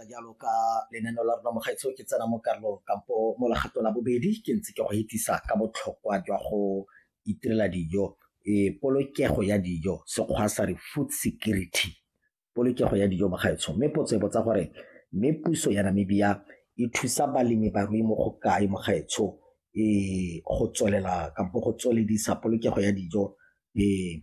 jalo ka lenaneo la rona mogaetsho ke tsena mo karolong kampo mo legato la bobedi ke ntse ke go hetisa ka botlhokwa jwa go itirela dijo e polokego ya dijo sekgwa sa re food security polokego ya dijo mogaetsho mme potso e botsa gore mme puso ya namibia e thusa balemi barui mo go kae mogaetsho e go tswelela kampo go tsweledisa polokego ya dijo e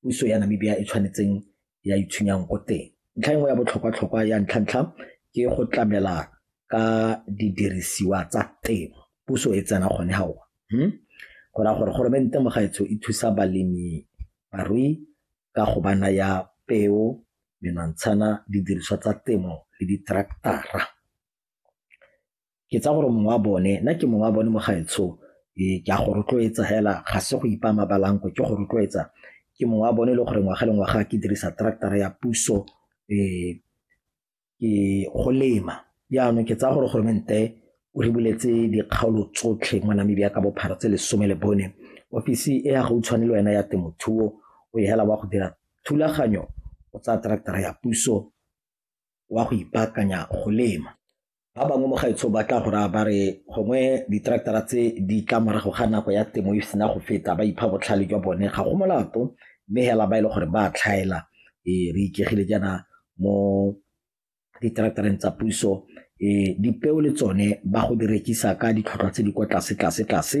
puso ya Namibia e tshwanetseng ya itshwenyang ko teng ntlha e nngwe ya botlhokwa-tlhokwa ya ntlha-ntlha ke go tlamela ka didirisiwa tsa temo puso e tsena gone ga ona hmm? go raya gore goromente mo gaetsho e thusa balemi barui ka go ba naya peo menwantshana didiriswa tsa temo le ditraktara ke tsaya gore mongwe wa bone nna ke mongwe wa bone mo gaetsho ee, ke a go rotloetsa fela ga se go ipa mabalanko ke go rotloetsa ke mongwe wa bone e le gore ngwaga le ngwaga ke dirisa tractara ya puso um ke go lema jaanong ke tsaya gore goromente o re buletse dikgaolo tsotlhe mo namibia ka bophara tse lesome le bone ofisi e ya gautshwane le wena ya temothuo o e hela wa go dira thulaganyo o tsaya tractara ya puso wa go ipaakanya go lema Ba bangwe mo gaetsho ba tla go raya ba re gongwe diteraktara tse di tla morago ga nako ya temo e sena go feta ba ipha botlhale jwa bone ga go molato mme hela ba e le gore ba tlhaela e re ikegile jaana mo diteraktareng tsa puso e dipeo le tsone ba go di rekisa ka ditlhotlhwa tse di kwa tlase tlase tlase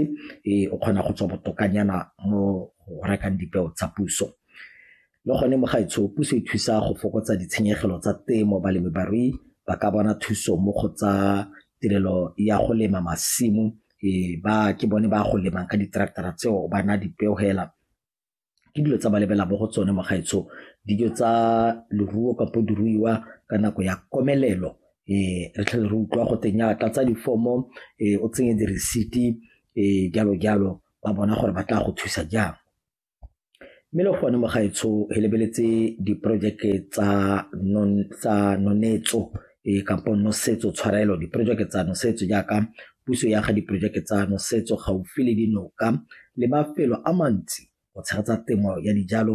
e o kgona go tswa botokanyana mo go rekang dipeo tsa puso. Le gone mo gaetsho puso e thusa go fokotsa ditshenyegelo tsa temo balemibarui ba ka bona thuso mo go tsa tirelo ya go lema masimo e ba ke bone ba go lemang ka di-tractor-a tseo ba na dipeo hela ke dilo tsa ba lebela mo go tsone mo gaetsho dijo tsa leruo kapo diruiwa ka nako ya komelelo um re tlhele re utlwa go teng ya tlatsa difomo um o tsenye diresiti um jalo jalo ba bona gore ba tla go thusa jang Mme le gone mo gaetsho re lebeletse diporojeke tsa nonetso kampo nosetso tshwarelo diporojeke tsa nosetso jaaka puso ya ga diporojeke tsa nosetso gaufi le dinoka le mafelo a mantsi go tshegetsa temo ya dijalo